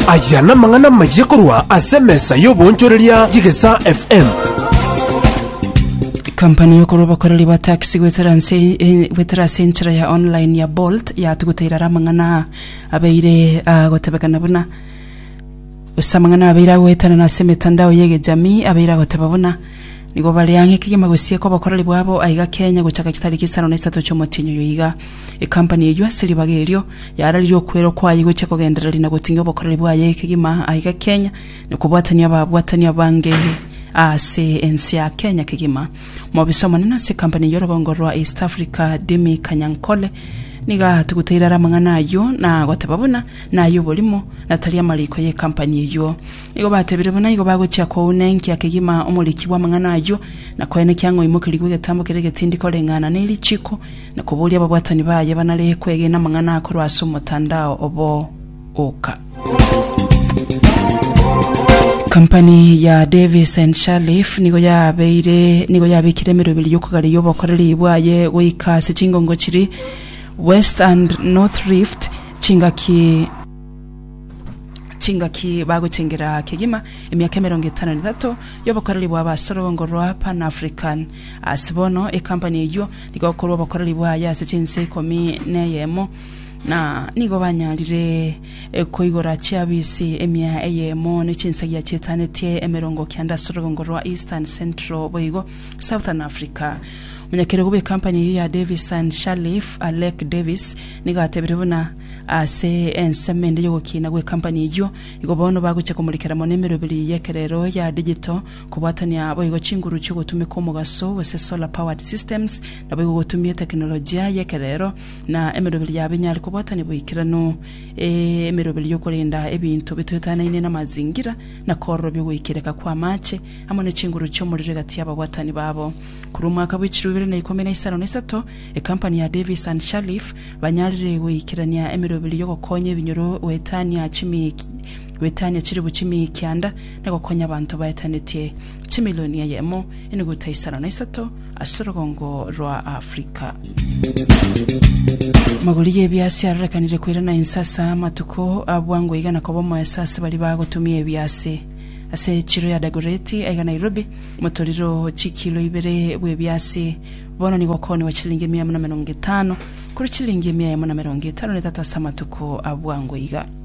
Aya namang'ana amayia korwa ase emesa y'oboonchoreria y'Egesaa FM. Kampani y'okorwa abakoreri ba taxi gwetera nse eh, gwetera ase enchera ya online ya Bolt yatuguta irara amang'ana aa abeire agotebekana buna gose amang'ana abeire agoetanana ase emetandao y'egejamii abeire agoteba buna nigo bare ang'e kegima gosieka obokoreri bwabo aiga Kenya gochaka chitariki isano na isato ch'omotienyi oyo iga Ekampani eyio ase ribaga erio yararirie okwerwa kwaye gochia kogendereria na goting'ia obokoreri bwaye kegima aiga Kenya na kobwatania ababwatani abange ase ense ya Kenya kegima. Omobisa omonene ase ekampani eyio orogongo rwa East Africa Demi Kanyankole nigo atuguteire are amang'ana ayio na goteba buna naye oborimo na tari amariko ye ekampani eyio. Nigo batebire buna igo bagochia kounenkia kegima omoriki bw'amang'ana ayio na koenekia ng'a oimokerigwe egetambo keria getindi koreng'ana ne richiko na koboria ababwatani baye banare kwegena amang'ana akorwa ase omotandao obo oka. Kampani ya Davis and Sharleaf nigo yabeire nigo yabekire emeroberi y'okogareria obokoreri bwaye goika ase chingongo chiri West and North Rift chingaki chingaki bagochengera kegima emiaka emerongo etano na etato y'obokoreri bwabo ase orwongo rwa Pan-African Ase bono ekampani eyio nigo ekorwa obokoreri bwaye ase chinse ikomi neyemo, na nigo banyarire koigora chiafisi emia eyemo ne chinsagia chietanetie emerongo kianda ase orogongo rwa Eastern, Central boigo Southern Africa. Omonyakerogo bw'ekampani eyio ya Davis and Sharleaf, Alec Davis, nigo atebire buna ase ensemo ende y'ogokiina gw'ekampani eyio, igo bono bagochia komorikera mono emeroberi y'ekerero ya digital Kobwatania boigo chinguru chi'ogotumeka omogaso, gose solar powered systems, naboigo gotumia etekinolojia y'ekerero na emeroberi yabo enyare kobwatania boikeranu emeroberi y'okorenda ebinto bitoetanaine namazingira na kororobia ogoikereka kw'amaache amo ne chinguru chi'omorero egati y'ababwatani babo. Korwa omwaka bwe chiruu ibere na ikomi na isano na isato, ekampani ya Davis and Shalliff banyarire goikerania emeroberi y'ogokonya ebinyoro goetania chimikia goetania chiribu chimikianda na gokonya abanto baetanetie chimilioni eyemo, enuguta isano na isato ase orogongo rwa Afrika. Magori y'ebiasi arorekanire koirana inse ase amatuko a bwango iga na koba omoeso ase baria bagotumia ebiasi. Ase chiro ya Dagoreti aiga Nairobi, motoriro chikilo ibere bw'ebiasi bono nigo okooniwa chilingi emia emo na emerongo etano korwa chilingi emia emo na emerongo etano na etato ase amatuko a bwango iga.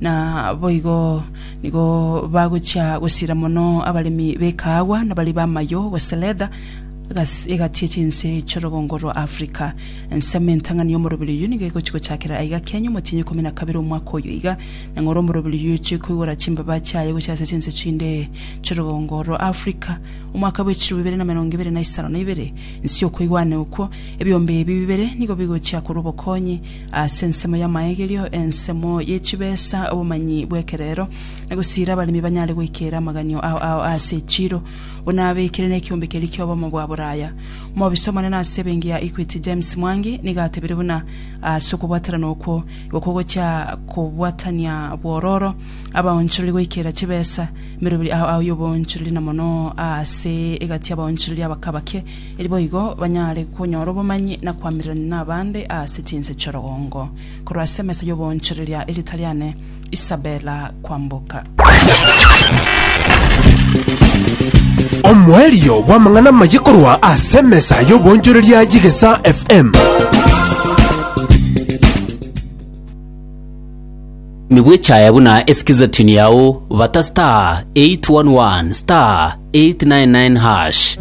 na boigo nigo bagochia gosira mono abaremi b'ekaagwa na baria b'amayio gose letha agas- egati ye chinse chi'orogongo rwa Africa. Ensemo entang'ani y'omoroberi oyio nigo egochia gochakera aiga kiaNyuo Motienyi ikomi na kabere omwaka oyo iga, na ng'ora omoroberi oyio ochia koigora chimbaba chiaye gochia ase chinse chinde chi'orogongo rwa Africa. Omwaka bw'echiruu bibere na emerongo ebere na isano na ibere, inse y'okoigwana okwo, ebiombe ebi bibere nigo bigochia korwa obokonyi Ase ensemo y'amaegerio, ensemo ye chibesa, obomanyi bw'ekerero, na gosiira abaremi banyare goikera amaganio ao ao ase echiiro, buna abekire nekiombe keria ki'obomo bwa boraya. Omobisa omonene ase ebenki ya Equity James Mwangi nigo atebire buna ase okobwaterana okwo igo kogochia kobwatania bwororo abaonchorori goikera chibesa meroberi ao ao y'oboonchorori na mono ase egati y'abaonchorori abake abake eri boigo banyare konyora obomanyi na koamererania nabande ase chinse chi'orogongo. Korwa ase emesa y'oboonchoreria erieta riane Isabella Kwamboka. Omoerio bw'amang'ana amaye korwa ase emesa y'oboonchoreria y'Egesaa FM. Nigo echaya buna esikiza tune yao bata star 811 star 899 hash.